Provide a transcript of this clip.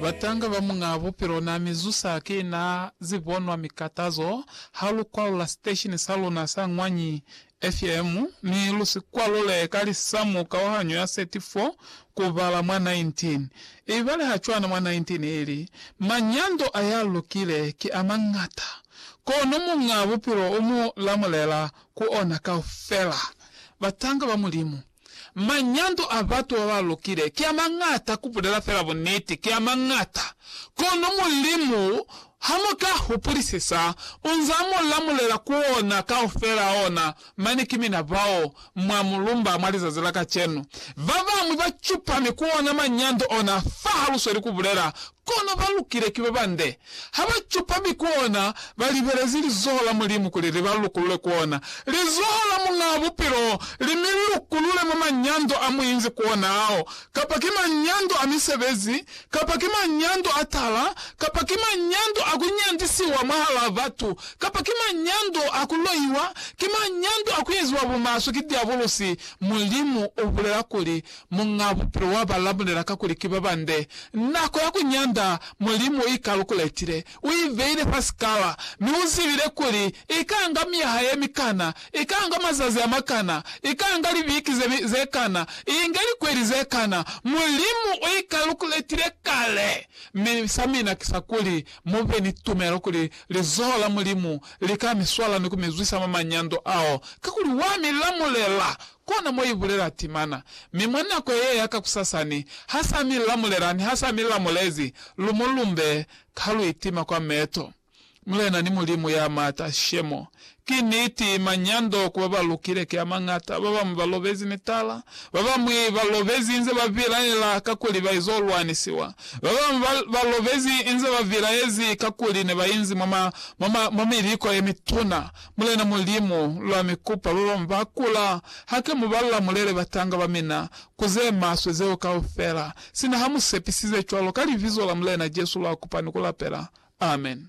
Batanga ba Muñaa Bupilo na mi zusa ki na zibonwa mikatazo ha lu kwalula siteshini sa luna sa Ñwanyi FM, mi lu si kwalule ka lisamu kauhanyo ya 34 ku bala mwa 19. Ibale ha cwana mwa 19 ili, Manyando a ya lukile ki a mañata, kono Muñaa Bupilo u mu lamulela ku ona kaufela. Batanga ba Mulimu. Manyando a batu ba ba lukile ki a mañata, ku bulela fela buniti, ki a mañata. Kono Mulimu, ha mu ka hupulisisa, u nz'a mu lamulela ku ona kaufela a ona. Mane ki mina bao, mwa mu lumba mwa lizazi la kacenu. Ba bañwi ba cupami ku ona manyando ona fa ha lu sweli ku bulela, Kono ba lukile ki ba bande. Ha ba cupa mi koona ba libelezi lizoho la Mulimu kuli li ba lukulule koona lizoho la Muñaa Bupilo li mi lukulule mwa manyando a mu inzi koona ao, kapa ki manyando a misebezi, kapa ki manyando a tala, kapa ki manyando a ku nyandisiwa mwahalaa batu, kapa ki manyando a ku loiwa, ki manyando a ku eziwa bumaswe ki diabulusi, Mulimu u bulela kuli, Muñ'a Bupilo wa ba lamulela kakuli ki ba bande. Nako ya ku nyanda Mulimu u i kalukuletile. U i beile fa sikala, mi u zibile kuli i ka nga myaha ye mikana, i ka nga mazazi a makana, i ka nga libiki ze, ze kana, i inge likweli ze kana. Mulimu u i kalukuletile kale. Mi sa mina ki sa kuli mu be ni tumelo kuli lizoho la Mulimu li ka mi swala ni ku mi zwisa mwa manyando ao, kakuli wa mi lamulela Kona mo ibulela timana. Mi mwa nako ye ya kakusasani, ha sa mi lamulela, ni ha sa mi lamulezi, lumo lumbe ha lu itima kwa meto. Mulena ni Mulimu ya Maata, Shemo. Ki niti, manyando ku ba ba lukile ki a mañata. Ba bañwi ba lobezi mitala. Ba bañwi ba lobezi inze ba bilaela kakuli ba izo lwanisiwa. Ba bañwi ba, ba lobezi inze ba bilaezi kakuli ne ba inzi mwa ma, mwa ma, mwa miliko ye mituna. Mulena Mulimu, lwa mi kupa babami ba kula, hake mu ba lamulele batanga ba mina ku ze maswe zeo kaufela, sina ha mu sepisize cwalo ka Libizo la Mulena Jesu lwa kupa ni ku lapela. Amen.